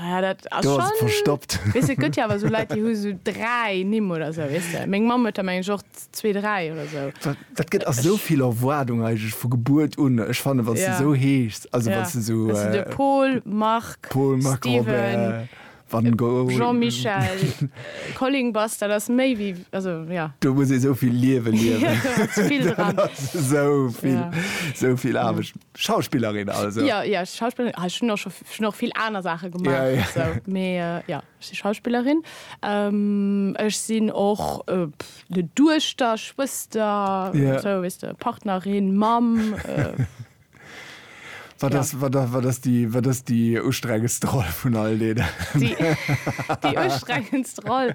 Ja, dat ass do schon, verstoppt weißt, gëtt ja awer so Leit déi hu so dräi Nimm oder sou weißt du? Meng Mamm huet der meng ech och zwee dräi oder sou dat, dat gëtt ass esou vill Erwaardung eigentlech vu Gebuert un ech fannen wann ja. de sou heeschs also ja. wann de sou also de Paul Marc Paul Marc Steven Robert, Jean Michel Colling Bass dat ass méi wéi also ja do muss ee sou vill liewen liewen ja, sou vill ja. sou vill Aarbecht. Ja. Schauspillerin also? Ja, ja, ech si Schauspillerin. Ech hunn och scho, ech hunn och vill aner Saache gemaach. Ja, ja. Esou, mee jo, ech si Schauspillerin. Ech sinn och ne Duechter, Schwëster, Ja. Esou, weess de, Partnerin, Mamm. Wat Ja. ass, wat ass, wat ass déi, wat ass déi ustrengendste Roll vun all deenen? Déi, déi ustrengendst Roll?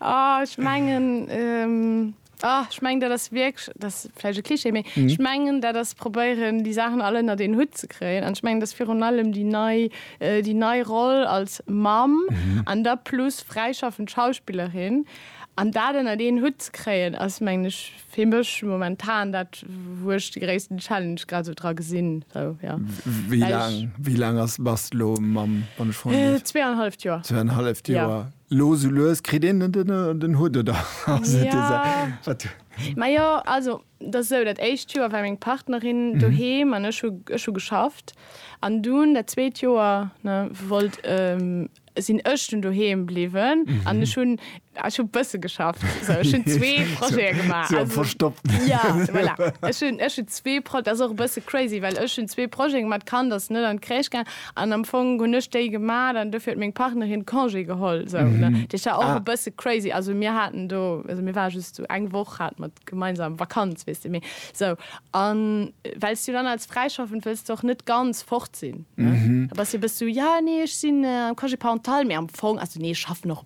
Oh, ech mengen. Ah, ech mengen, dat ass wierklech, dat ass vläicht e Klischee, mee ech mengen, dat ass probéieren, déi Saachen all ënnert een Hutt ze kréien. An ech mengen, et ass virun allem déi nei, déi nei Roll als Mamm an da plus fräischaffend Schauspillerin. An dat ënnert een Hutt ze kréien ass, mengen ech, fir mech momentan dat, wou ech de gréissten Challenge grad esou dra gesinn. Sou, jo. Wéi laang, wéi laang ass, bass de elo Mamm, wann ech froen dierf? Zwee an e halleft Joer. Zwee an e halleft Joer. Lo sou lues kritt een et ënner den Hutt, oder? Majo, also et ass esou, dat éischt Joer war meng Partnerin doheem an ech hu ech hu geschafft. An dunn dat zweet Joer, ne, wollt, sinn ech dunn doheem bliwwen an ech hunn, ech hu bësse geschafft. Sou, ech hunn zwee Projete gemaach. Sou am Verstoppten. Jo, voilà. Ech hunn, ech hunn zwee Pro, dat ass och e bësse crazy, well ech hunn zwee Projete gemaach, d'Kand ass net an d'Crèche gaangen An am Fong hunn ech déi gemat an dofir huet meng Partnerin Congé geholl sou ne. Dat war och e bësse crazy. Also mir haten do, also mir ware just sou eng Woch hate mer gemeinsam Vakanz weess de mee sou. An well s du dann als Fräischaffend wëlls de och net ganz fort sinn ne. Da bass de e bësse sou, jo nee ech sinn am Congé parental mee am Fong, also nee ech schaffen och.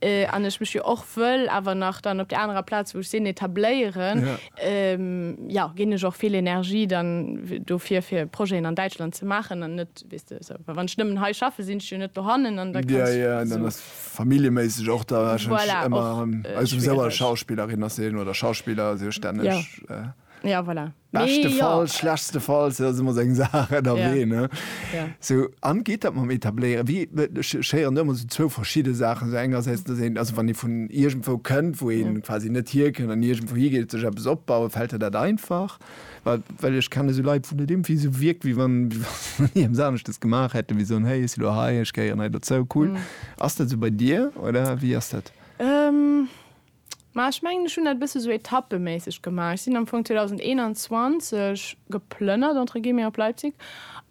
an ech mech jo och wëll awer nach dann op där anerer Plaz, wou ech sinn, etabléieren, jo, ginn ech och vill Energie dann dofir, fir Projeten an Däitschland ze maachen an net, weess de, esou. Well wann ech nëmmen hei schaffen, sinn ech jo net dohannen an da kann ech, esou. Familljeméisseg och da warscheinlech ëmmer, aus dem Sou als Schauspillerin ass een oder Schauspiller sech stänneg. Jo, voilà. Beschtefalls, ja. schlechtstefalls, dat ass ëmmer seng Saach ënnerwee, ne? Ja. So, an geet dat mam Etabléieren? Wéi, ech, ech héieren do ëmmer esou zwou verschidde Saachen. Esou engersäits, dass een, also wann ee vun iergendwou kënnt, wou ee ja. quasi net hierkënnt an iergendwou higeet, sech eppes opbauen, fält der dat einfach? Well, well ech kenne esou Leit, wou dat irgendwie esou wierkt, wéi wann, wéi wann ierms aneschters gemaach hätten, wéi soen, hey, ech si lo hei, ech gehéieren hei dozou, cool. Mhm. Ass dat esou bei dir oder wéi ass dat? Ähm. Ma ech mengen ech hunn dat e bësse sou etappeméisseg gemaach. Ech sinn am Fong 2021 geplënnert entre guillemets op Leipzig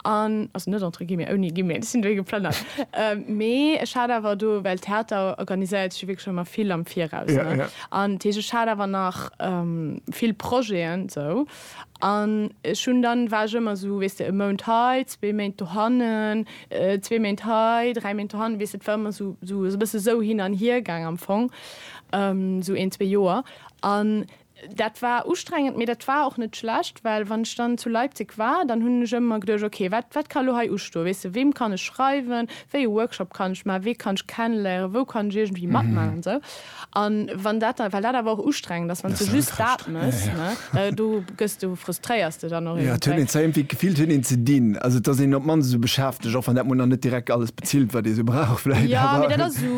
an also net entre guillemets, ouni guillemets, ech sinn dohi geplënnert. ähm, mee ech hat awer do, well Theater organiséiert sech jo wierklech ëmmer vill am Viraus, Ja, ne? ja. An d'Heesch ech hat awer nach ähm, vill Projeten sou An ech hunn dann, war ech ëmmer esou, weess de, e Mount hei, zwee Méint dohannen, zwee Méint hei, dräi Méint dohannen, weess de, et war ëmmer esou, esou e bësse esou hin an hier gaang am Fong, esou een, zwee Joer. An dat war ustrengend, mee dat war och net schlecht, well wann ech dann zu Leipzig war, dann hunn ech ëmmer geduecht, ok, wat, wat ka elo hei ustoen, weess de, weem kann ech schreiwen, wéi e Workshop kann ech maachen, wee kann ech kennenléieren, wou kann ech iergendwéi matmaachen an esou. An wann dat da, well dat awer och ustrengend ass, wann s du just dat mëss, ne, do gëss du, frustréiers de dann och eventuell. Jo, et huet een zwar iergendwéi d'Gefill, et huet een ze dinn. Also et ass een op d'mannst esou beschäftegt, och wann dat mol nach net direkt alles bezilt, wat ee sou brauch vläicht, awer. Jo, mee dat ass esou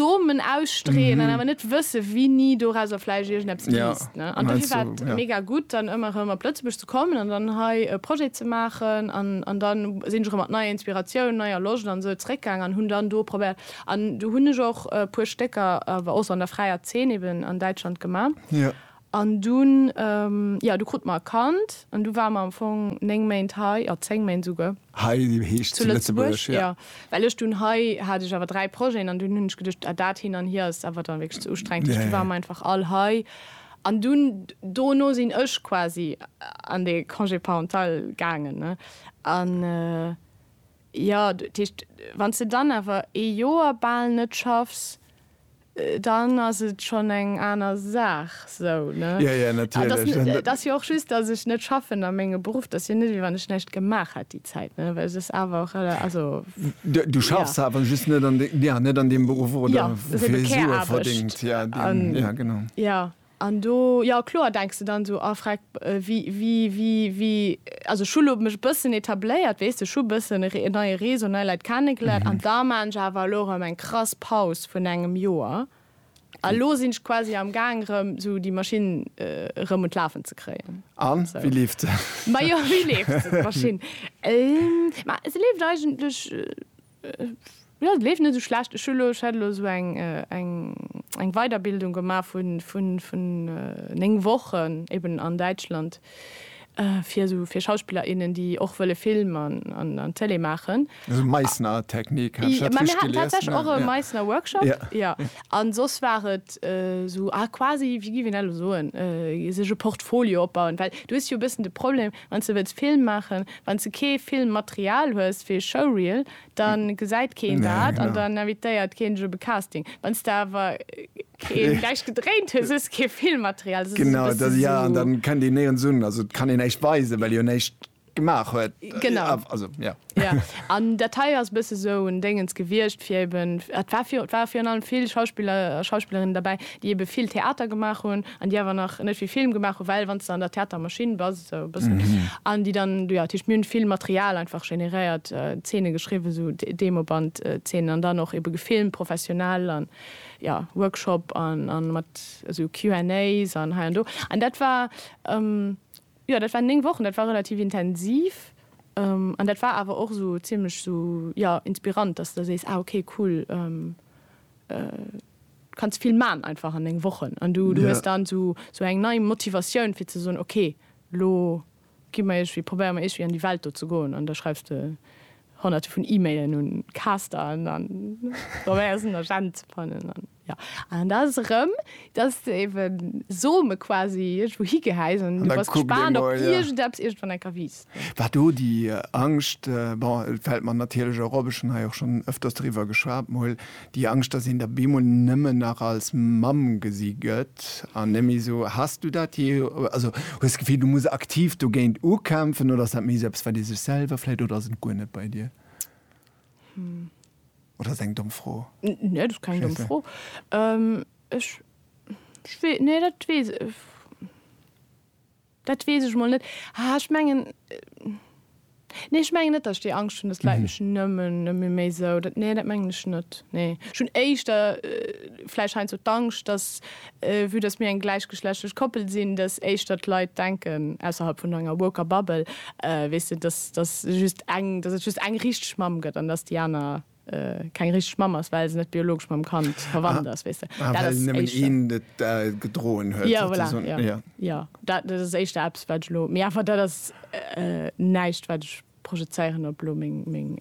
Somen ausstreeën an awer net wësse wéini dorauser vläicht iergendeppes liisst, ne. An dofir war et mega gutt, dann ëmmer erëm op Lëtzebuerg ze kommen an dann hei e Projet ze maachen. An dann sinn ech erëm mat neier Inspiratioun, neier Loscht an esou zeréckgaangen an hunn dann do probéiert, An do hunn ech och e puer Stécker awer och sou an der fräier Zeen eben an Däitschland gemaach. An dunn, jo, du krut mer e Kand an du war mer am Fong néng Méint hei, jo, zéng Méint esouguer. Hei heescht zu Lëtzebuerg, jo. Jo, well ech dunn, hei hat ech awer dräi Projeten an dunn hunn ech geduecht, ah, dat hin an hier ass awer dann wierklech ze ustrengend. Duerch du war mer einfach all hei. An dunn, dono sinn ech quasi an dee Congé parental gaangen, ne? An. Jo, dat heescht, wann s de dann awer ee Joer bal net schaffs, dann ass et schonn eng aner Saach. Sou, ne? Jo, jo, natierlech. An et ass jo och just, datt ech net schaffen a menge Beruff, dat ass jo net, wéi wann ech näischt gemaach hätt déi Zäit, ne? Well et ass awer och, also, jo. Du schaffs awer just net an, jo, net an deem Beruff, oder? Jo, et ass ebe Care-Aarbecht. Fir ee Sue verdéngt, jo, deen, jo, genau. Jo. An do, jo kloer, denks de dann esou, oh freck, wéi, wéi, wéi, wéi, also ech hu lo mech e bëssen etabléiert, weess de, ech hu e bëssen e neie Réseau, nei Leit kennegeléiert an da maan ech awer elo erëm eng krass Paus vun engem Joer a lo sinn ech quasi am Gaang erëm esou déi Maschinn erëm un d'Lafen ze kréien. A wéi leeft se? Majo, wéi leeft se, d'Maschinn? Ma se leeft eigentlech. Jo, et leeft net esou schlecht. Ech hu lo, ech hat elo esou eng, eng, eng Weiderbildung gemaach vu, vu, vun néng Wochen eben an Däitschland fir esou, fir Schauspiller, innen, déi och wëlle Film an, an, an Télé maachen. Esou Meissner Technik, hat ech dat richteg gelies? Mä mir haten tatsächlech och e Meissner Workshop, jo. Jo. An soss war et esou, ah, quasi, wéi géif een dat elo soen, sech e Portfolio opbauen. Well du hues jo e bëssen de Problem, Wanns de wëlls Film maachen, wanns de kee Filmmaterial hues fir e Showreel, dann gesäit keen dat an dann invitéiert keen dech op e Casting. Wanns de awer keen näischt gedréint hues, hues de kee Filmmaterial. Dat ass esou e bësse sou. Genau, jo, an dann kënnt een néirens un. Also et kann een näischt weisen, well ee jo näischt gemaach huet. Genau. Also, jo. Ja, an dat hei ass e bësse sou en Déngens gewiescht, fir eben, et war virun, et ware virun allem vill Schauspiller a Schauspillerinnen derbäi, déi ebe vill Theater gemaach hunn an déi awer nach net vill Film gemaach hunn, well wann s de an der Theatermaschinn bass, esou e bëssen, an déi dann, jo, dat heescht, mir hunn vill Material einfach generéiert, Zeene geschriwwen, sou Demobandzeenen, an dann och ebe gefilmt professionell an, jo, Workshop an, an mat esou Q&As an hei an do. An dat war, Jo, dat waren 9 Wochen, dat war relativ intensiv an dat war awer och esou zimmlech esou, jo, inspirant, dass de sees, ah ok, cool, du kanns vill man einfach an 9 Wochen an du hues dann esou eng nei Motivatioun fir ze soen, ok, lo gi mer iergwéi, probéiere mer iergwéi an déi Welt do ze goen an da schreifs de honnerte vun E-Mailen un Caster an probéiers en Agent ze fannen. Jo, an da ass et erëm, dass de ebe Some quasi iergendwou higehäis an du bass gespaant op iergendeppes iergendwann enker wiisst, ne? War do déi Angscht, bon, et fält mer natierlech och op, ech hunn hei och schonn ëfters driwwer geschwat mol, déi Angscht, dass een der bemol nëmmen nach als Mamm gesi gëtt an net méi esou. Has du dat jee, also hues d'Gefill, du muss aktiv dogéint ukämpfen oder ass dat méi esou eppes, wat ee sech selwer vläicht, oder ass et guer net bei dir? Hm, Oder ass eng domm Fro? Nee, dat ass keng domm Fro. Ech, ech wee, nee, dat weess, dat weess ech mol net. Haa, ech mengen, nee, ech mengen net, datt ech déi Angscht hunn, datt d'Leit mech nëmmen, nëmme méi esou, dat, nee, dat mengen ech net, nee. Ech hunn éischter vläicht heiansdo d'Angscht, datt Vue dass mir eng gläichgeschlechtlech Koppel sinn, dass éischter d'Leit denken, ausserhalb vun enger woker Bubble, weess de, dass dass just eng, dass et just eng richteg Mamm gëtt an dass déi aner keng richteg Mamm ass, well se net biologesch mam Kand verwannt ass, weess de. Ah, well nëmmen een et gedroen huet, sozusagen. Jo, voilà, jo. Jo, dat dat ass éischter eppes, wat ech elo, mee awer dat ass näischt, wat ech projezéieren op elo meng meng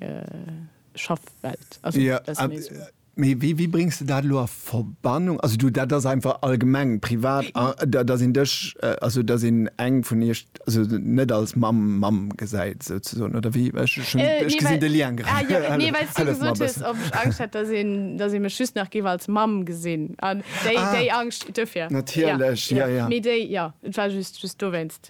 Schaffwelt. Also, dat ass méi esou. Mee wéi, wéi bréngs de dat elo a Verbannung? Also du, dat ass einfach allgemeng privat, dass een dech, also dass een eng vun iech also net als Mamm, Mamm gesäit souzesoen, oder wéi? Ech hu schonn, ech gesinn de Lien grad. Ah jo, nee, well s du gesot hues, ob ech Angscht hätt, dass een, dass ee mech just nach géif als Mamm gesinn. An déi, déi Angscht, duerfir. Natierlech, jo, jo. Mee déi, jo, et war just, just dowéinst.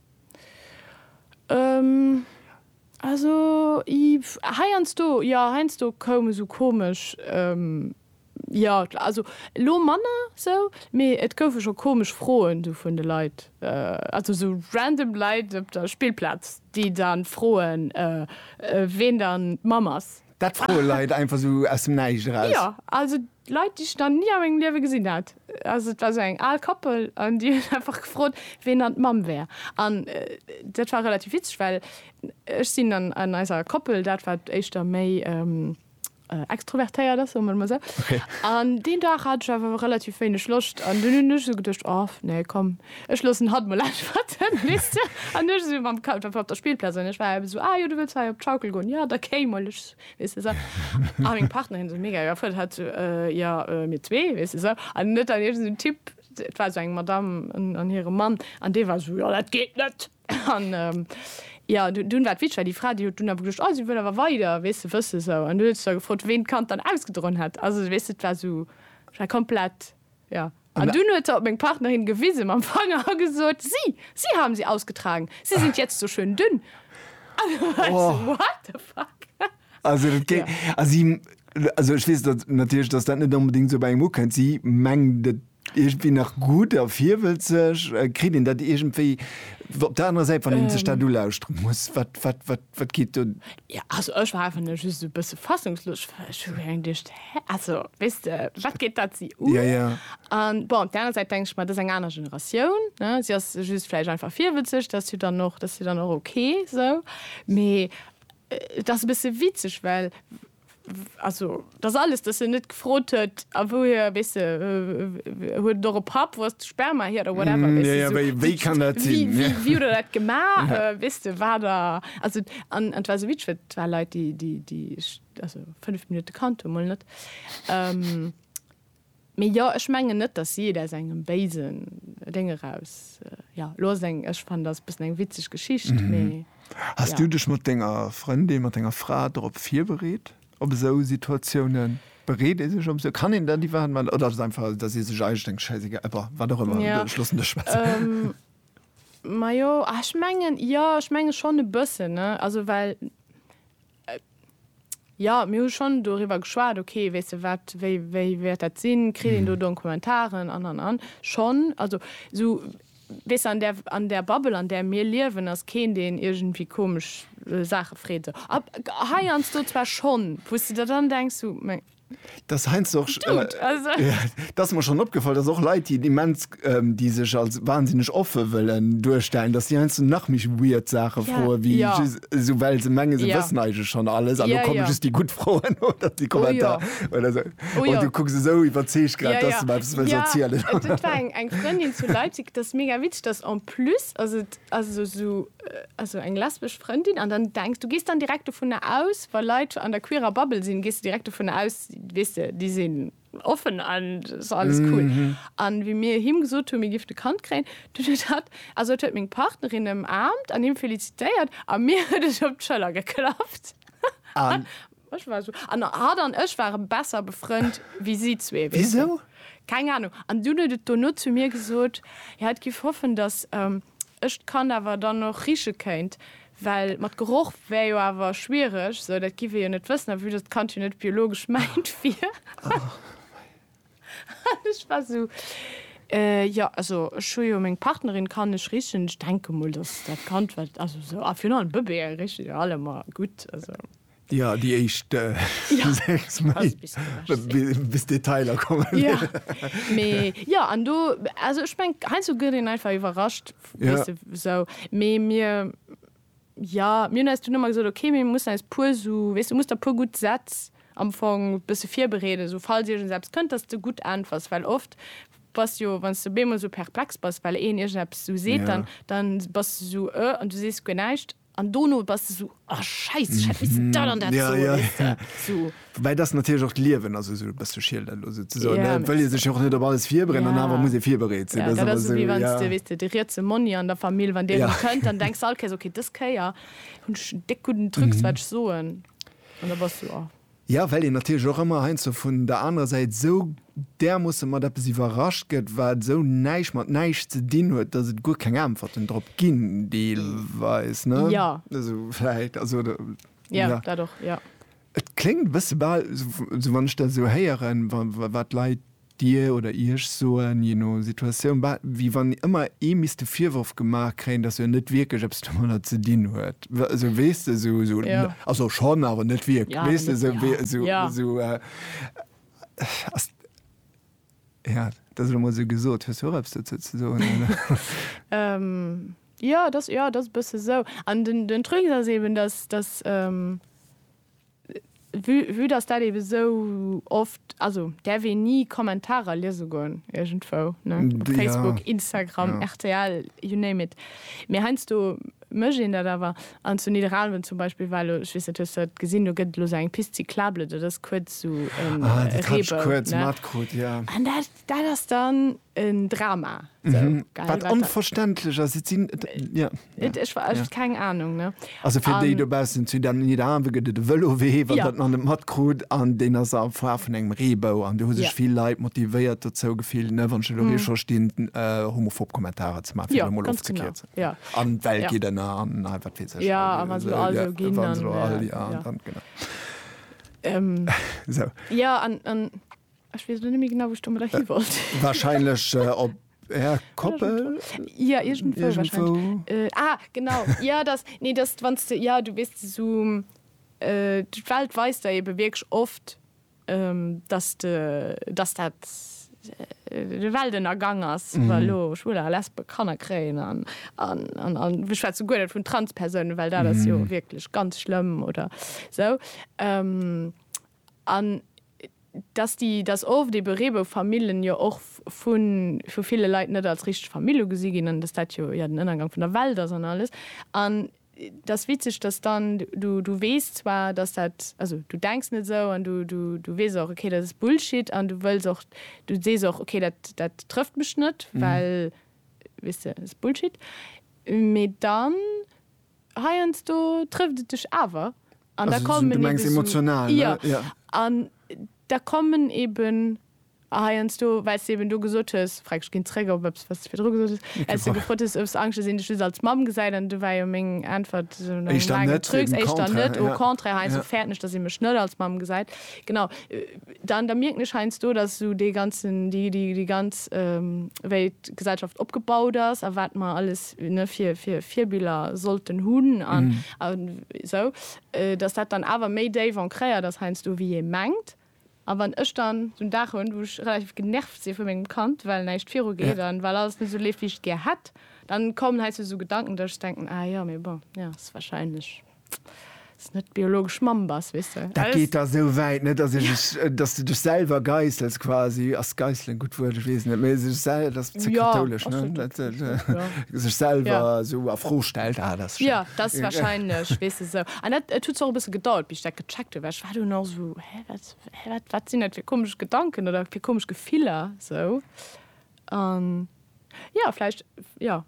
Also heiansdo, jo heiansdo koum esou komesch, jo also elo manner sou, mee et goufe scho komesch Froen sou vun de Leit, also sou random Leit op der Spillplaz, déi dann froen, ween dann d'Mamm ass. Dat froe Leit einfach sou aus dem Näischt eraus? Jo, also Leit, déi ech nach ni a mengem Liewe gesinn hat. Also et war sou eng al Koppel an déi hunn einfach gefrot, wien dann d'Mamm wär. An dat war relativ witzeg, well ech sinn an an eiser Koppel dat, wat éischter méi extrovertéiert ass, soe mer et emol sou. An deen Dag hat ech awer relativ wéineg Loscht an dunn hunn ech sou geduecht, Och nee, komm. Ech loossen hatt mol äntwerten, weess de. An ech esou mam Ka-, dat war op der Spillplaz, an ech war ebe esou, Ah jo, du wëlls hei op d'Schaukel goen? Jo, da kéi mol, ech, weess de esou. A meng Partnerin esou mega iwwerfuerdert, hat esou, Äh, jo, äh, mir zwee, weess de esou. An net an iergend esou en Typ, et war esou eng Madamm an, an hire Mann, an dee war esou, Jo, dat geet net. An, jo, du, dunn war et witzeg, well déi Fra, déi huet dunn awer gesot, Oh, si wëll awer weider, weess de, wëss esou. An du huet se da gefrot, ween d'Kand dann ausgedroen hätt. Also, weess de, et war esou, et war komplett, jo. An dunn huet se op meng Partnerin gewisen mam Fanger a gesot, Sie, Sie haben sie ausgetragen. Sie sind jetzt so schön dünn. An du war ech sou, What the fuck? Also dat géi, also si, also ech weess dat natierlech, dass dat net onbedéngt esou bei engem ukënnt. Si mengt et iergendwéi nach gutt a virwëllt sech. Kritt een dat iergendwéi op der anerer Säit, wann een sech dat ulauschteren muss? Wat, wat, wat, wat geet do? Jo, also ech war einfach just e bësse fassungslos, well ech hu gemengt, Also, weess de, wat geet dat si un? Ja, ja. An bon, op där aner Säit denk ech mer, et ass eng aner Generatioun, ne? Si ass just vläicht einfach virwëtzeg, dat ass jo dann och, dat ass jo dann och ok esou. Mee et ass e bësse witzeg, well, also dass alles, dass en net gefrot huet, a wouhier, weess de, huet et och e Papp, wou ass de Sperma hier oder whatever, weess de, esou. Ja, ja, wéi kann dat sinn? Wéi, wéi huet der dat gemaach? Weess de, war der, also, an et war esou witzeg, well et war Leit, déi, déi, déi ech. Also 5 Minutte kannt e mol net. Mee jo, ech mengen net, datt si et aus engem béisen Déng eraus, jo, elo ass et eng, ech fannen, dat ass e bëssen eng witzeg Geschicht, mee. Has du dech mat denger Frëndin, mat denger Fra dorop virbereet, op esou Situatiounen? Bereet ee sech op esou, kann een dat iwwerhaapt maachen oder ass et einfach, datt ee sech eigentlech denkt, schäissegal, eh bon, wat och ëmmer, ech loossen dech schwätzen? Majo, ech mengen, jo, ech menge schonn e bëssen, ne, also well Jo, mir hu schonn doriwwer geschwat, ok, weess de wat, wéi wéi wäert dat sinn, kritt een do Donkumentaren an an an. Schonn, also esou, weess de, an där an där Bubble an där mir liewen ass keen deen iergendwéi komesch Saache freet esou. Ab heiansdo zwar schonn, wou s de der dann denks, sou, meng. Das heinsst och dass mer schon opgefall, dass och Leit déi immens déi sech als wahnsinneg offe wëllen duerstellen, dass déi heinsdo nach méi weird Saache froe wéi just esou well se menge se wëssen eigentlech schon alles an do komme just déi gutt Froen oder déi Kommentar oder sou an du kucks esou iwwerzeegt grad dass de mer eppes wëlls erzielen. Et war eng Frëndin zu Leipzig, dat ass mega witzeg, dass en plus ass et also sou. also eng lesbesch Frëndin an dann denkst du gehst dann direkt vu ne aus weil Leiit an der queerer Babbel sinn gehst du direkt vu ne aus wisse die sinn offen an alles cool an mm -hmm. wie mir him gesot hun mir gift de Kand kréien du hat also huet meng Partnerin em Aamt an him felicitéiert a mir huet ech op d'Schëller geklappt an ech war so an hat an ech ware besser befrënnt wie si zwee wieso keng Ahnung an du huet et dono zu mir gesot ja et giff hoffen dass ähm, Ech d'Kand awer dann och riche kéint, well mat Geroch wär jo awer schwiereg, sou dat giff ee jo net wëssen, a vue dass d'Kand jo net biologesch mäint wier. An ech war sou, Jo, also ech hu jo meng Partnerin, kann ech richen? Ech denke mol, dass dat Kand, wat, also sou, a virun allem Bëbeeë riche jo allemer gutt, also. Ja, déi éischt sechs Méint, bis d'Detailer kommen. Ja, mee jo, an do, also ech mengen, heiansdo gëtt een einfach iwwerrascht, weess de, esou. Mee mir, jo, mir hunn eis dunn ëmmer gesot, okay, mir mussen eis e puer esou, weess de, musst der e puer gutt Sätz am Fong e bësse virbereeden, esou falls iergends eppes kënnt, dass s de gutt äntwers. Well oft bass jo, wann s de op eemol esou perplex bass, well een iergendeppes esou seet, dann bass de esou, Ë? An du sees guer näischt. An dono bass de sou, oh Scheiss, ech hätt missen dat an dat soen, weess de, sou. Woubäi dass natierlech och d'Liewen ass esou e bësse Schiel dat elo souzesoen, ne? Et wëll ee sech jo och net op alles virbereeden an awer muss ee virbereet sinn. Dat ass esou wéi wann s de, weess de, de rietse Monni an der Famill, wann deen erëm kënnt, dann denks de all Kéiers, ok, dës Kéier hunn ech en déck gudden Trucs wat ech soen an da bass du, oh. Jo, well een natierlech och ëmmer heiansdo vun der anerer Säit esou därmoosse mat eppes iwwerrascht gëtt, wat esou näischt mat näischt ze dinn huet, datt et guer keng Äntwerten drop ginn, deelweis. Ne? Ja. Also, vläicht. Also, oder, ja. Jo, dat och, jo. Et kléngt e bësse bal, esou wann ech dat esou héieren, wa, wat d'Leit. Dir oder Iech soen, je no Situatioun, bah, wéi wann ëmmer ee misst de Virworf gemaach kréien, dass en net wierklech eppes domadder ze dinn huet. Esou, weess de, esou, esou, Ja. Also schonn, awer net wierklech. Ja, awer Weess de, net, esou, ja. wéi, esou, Ja. esou, äh, ass, ja, dat ass elo mol esou gesot. Hues du och eppes dozou ze soen, oder? Ähm, ja, dat ass, ja, dat ass e bësse esou. An den, den Truc ass eben, dass, dass, ähm, Vue vue dass dat eben esou oft, also däerf een ni Kommentarer liese goen iergendwou, ne, op D, ja. Facebook, Instagram, Ja. rtl, you name it. Mee heiansdo mécht een dat awer. An zu Nidderaanwen zum Beispill war elo, ech weess net, hues de dat gesinn, do gëtt et elo esou eng Piste cyclable, dat ass kuerz esou en Ah, dat hat ech Reebou, kuerz ne. matkrut, ja. An dat, Dat ass dann en Drama. Wat onverständlech ass. Keng Anung. Also fir déi dobaussen, zu Nidderaanwe gëtt et e Vëlowee, wann der nach net matkrut. An deen ass a Form vun engem Reebou. An do hu sech vill Leit motivéiert dozou gefillt, wann ech elo hei scho stinn, homophob Kommentarer ze maachen, fir et emol ofzekierzen. An d'Welt geet ënner an wat weess ech. Jo, a wa se elo all esou ginn, dann. Esou. Jo, an. Ech wees lo net méi genau wou ech domadder hi wollt. Wahrscheinlech op är Koppel? Ja iergendwou wahrscheinlech. Iergendwou. Ah genau, ja dass, nee dass du wanns de, ja du wees de sou, d'Welt weist der eben wierklech oft dass de, dass dat de Weltennergang ass wa lo Schwuler a Lesben Kanner kréien an, an, an, an ech schwätze guer net vun Transpersounen, well dat ass jo wierklech ganz schlëmm oder sou. An dass déi, dass oft ebe Reeboufamillen jo och vu ville Leit net als richteg Famill ugesi ginn an dass dat jo ja den Ënnergang vun der Welt ass an alles. An et ass witzeg, dass dann, du, du weess zwar, dass dat, also du denks net esou an du, du, du weess och, okay, dat ass Bullshit an du wëlls och, du sees och, okay, dat, dat trëfft mech net, well, weess de, ass Bullshit. Mee dann Heiansdo trëfft et dech awer. An da kommen eben. Du mengs emotional, ne? Jo. An da kommen eben heiansdo, well s de eben do gesot hues, frag ech ginn zréck op eppes, wat s de virdru gesot hues, well s de gefrot hues, hues Angscht, dass een dech just als Mamm gesäit? An du war jo meng Äntwert no engem laangen Trucs, éischter net, au contraire, heiansdo fäerten ech, dass ee mech net als Mamm gesäit. Genau. Dann, da mierken ech heiansdo, dass esou dee ganzen, déi, déi ganz, wéi d'Gesellschaft opgebaut ass a wat mer alles, Virbiller sollten hunn an esou, datt dat dann awer méi déif ancréiert ass heiansdo wéi ee mengt. A wann ech dann esou en Dag hunn, wou ech relativ genervt si vu mengem Kand, well näischt virugeet an well alles net esou leeft, wéi ech et gär hätt, da kommen heiansdo esou Gedanken, datt ech denken, ah jo, mee bon, jo, ass warscheinlech. net biologesch Mamm bass weess de. Dat geet da sou wäit, ne, dass ech ech, dass de dech selwer geißels quasi. Ass geißelen e gutt Wuert? Ech weess et net, mee sech sel-, dat ass ze kathoulesch, ne? Dat sech selwer sou a Fro stellt, ah, dat ass schéin. Jo, dat ass wahrscheinlech, weess de, sou. An dat, et huet zwar och e bësse gedauert, bis ech dat gecheckt hunn, well ech war dunn och sou, hä, wat, hä, wat, wat sinn dat fir komesch Gedanken oder fir komesch Gefiller, sou. An jo, vläicht, jo.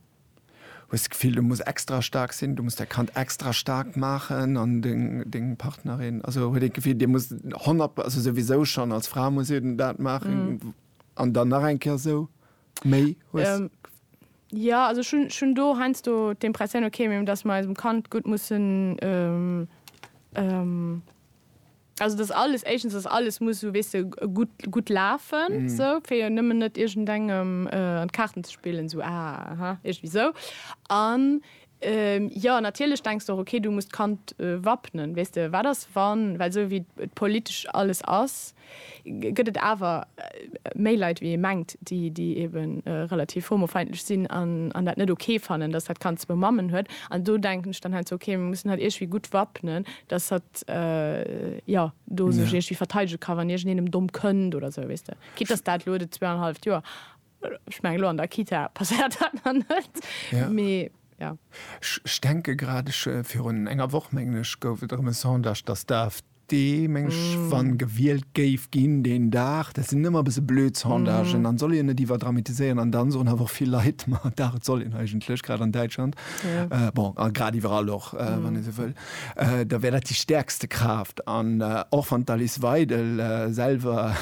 hues d'Gefill du muss extra staark sinn, du muss däi Kand extra staark maachen an deng deng Partnerin, also huet een d'Gefill dir musst 100, also souwisou schonn als Fra muss ee dat maachen an dann nach eng Kéier esou méi hues. Jo, also ech hunn ech hunn do heiansdo d'Impressioun, okay, datt mer eisem Kand gutt mussen. Also et ass alles, éischtens ass alles, muss esou, weess de, gutt, gutt lafen esou, fir jo nëmmen net iergendengem an d'Kaarten ze spillen, esou ah aha, iergendwéi esou. An jo, natierlech denks de och, okay, du muss d'Kand wappnen, weess de, wat ass wann, well esou wéi et politesch alles ass, gëtt et awer méi Leit wéi ee mengt, déi déi ebe relativ homofeindlech sinn an dat net ok fannen, datt dat Kand zwou Mammen huet. An do denken ech dann halt sou, ok, mir mussen hatt iergwéi gutt wappnen, datt hatt jo do sech iergwéi verteidege ka wann iergendeen em domm kënnt oder sou, weess de, quitte datt dat elo de zwee an e halleft Joer. Ech meng lo an der Kita passéiert dat nach net, mee jo. Ech denke grad, ech virun enger Woch mengen ech gouf et erëm e Sondage, datt d'AfD meng ech wann gewielt géif ginn deen Dag, dat sinn ëmmer e bësse blöd Sondagen, dann soll een net iwwerdramatiséieren an dann soen awer och vill Leit, ma dach et soll een eigentlech, grad an Däitschland, bon a grad iwwerall och wann ee sou wëll. da wär dat déi stäerkste Kraaft. An och wann d'Alice Weidel selwer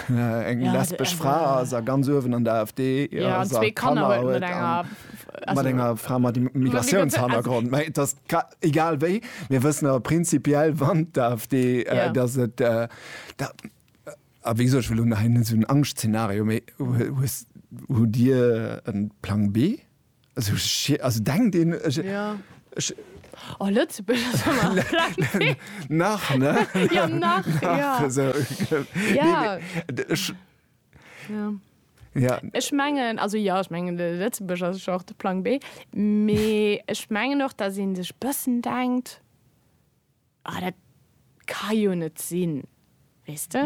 eng lesbesch Fra ass a ganz uewen an der AfD ass a Kanner huet a mat enger Fra mat Migratiounshannergrond, mä et ass egal wéi, mir wëssen awer prinzipiell, wann d'AfD, datt et da, a wéi gesot, ech wëll elo nach hei net esou en Angschtszenario, mä hues, hutt Dir e Plang B? Also, ech, also denkt een, ech, Ja. ech, Oh, Lëtzebuerg ass ëmmer flott. nach, ne? Ja, nach, ja. Also, Ja. nee, mee, d- ech, Ja. ja, Ech mengen, also ja, ech mengen, de Lëtzebuerg ass jo och de Plang B. Mee ech mengen och, datt ee sech e bëssen denkt, Ah, dat ka jo net sinn. Weess de?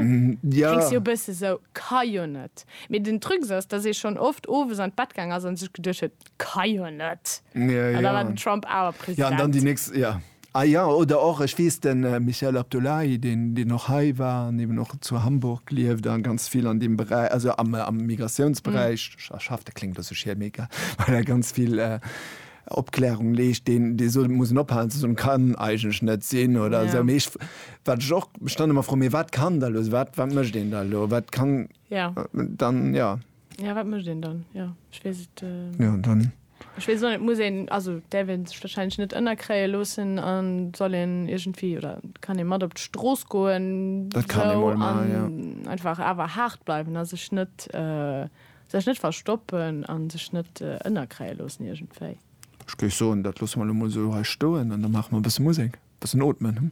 Ja. Kléngs jo e bësse sou, ka jo net. Mee den Trucs ass, dass ee schonn oft owes an d'Bett gaang ass a sech geduecht huet, ka jo net. Ja, An da war ja. den Trump awer President. Ja, an dann déi nächst, ja. Ah ja, oder och, ech weess, de Michael Abdullahi, deen, deen och hei war an eben och zu Hamburg lieft a ganz vill an deem Beräich, also am, am Migratiounsberäich schafft, dat kléngt elo sou schier, mee egal, well e ganz vill, Opklärung leescht, deen dee sot, et muss een ophalen ze soen, kann eigentlech net sinn oder esou. Mee ech, wat ech och, ech dann ëmmer froen, mee wat kann da elo se, wat wat mécht een da elo, wat kann Ja. dann, jo. Ja, wat mécht een dann, jo. Ech weess et, Jo, dann. ech weess och net, et muss een, also däerf ee sech warscheinlech net ënnerkréie loossen a soll een iergendwéi, oder kann ee mat op d'Strooss goen, Dat kann ee esou, mol an maachen, jo. einfach awer haart bleiwen a sech net, Sech net verstoppen a sech net ënnerkréie loossen iergendwéi. Ech géif soen, dat loosse mer elo mol esou hei stoen an da maache mer e bësse Musek, e bëssen ootmen.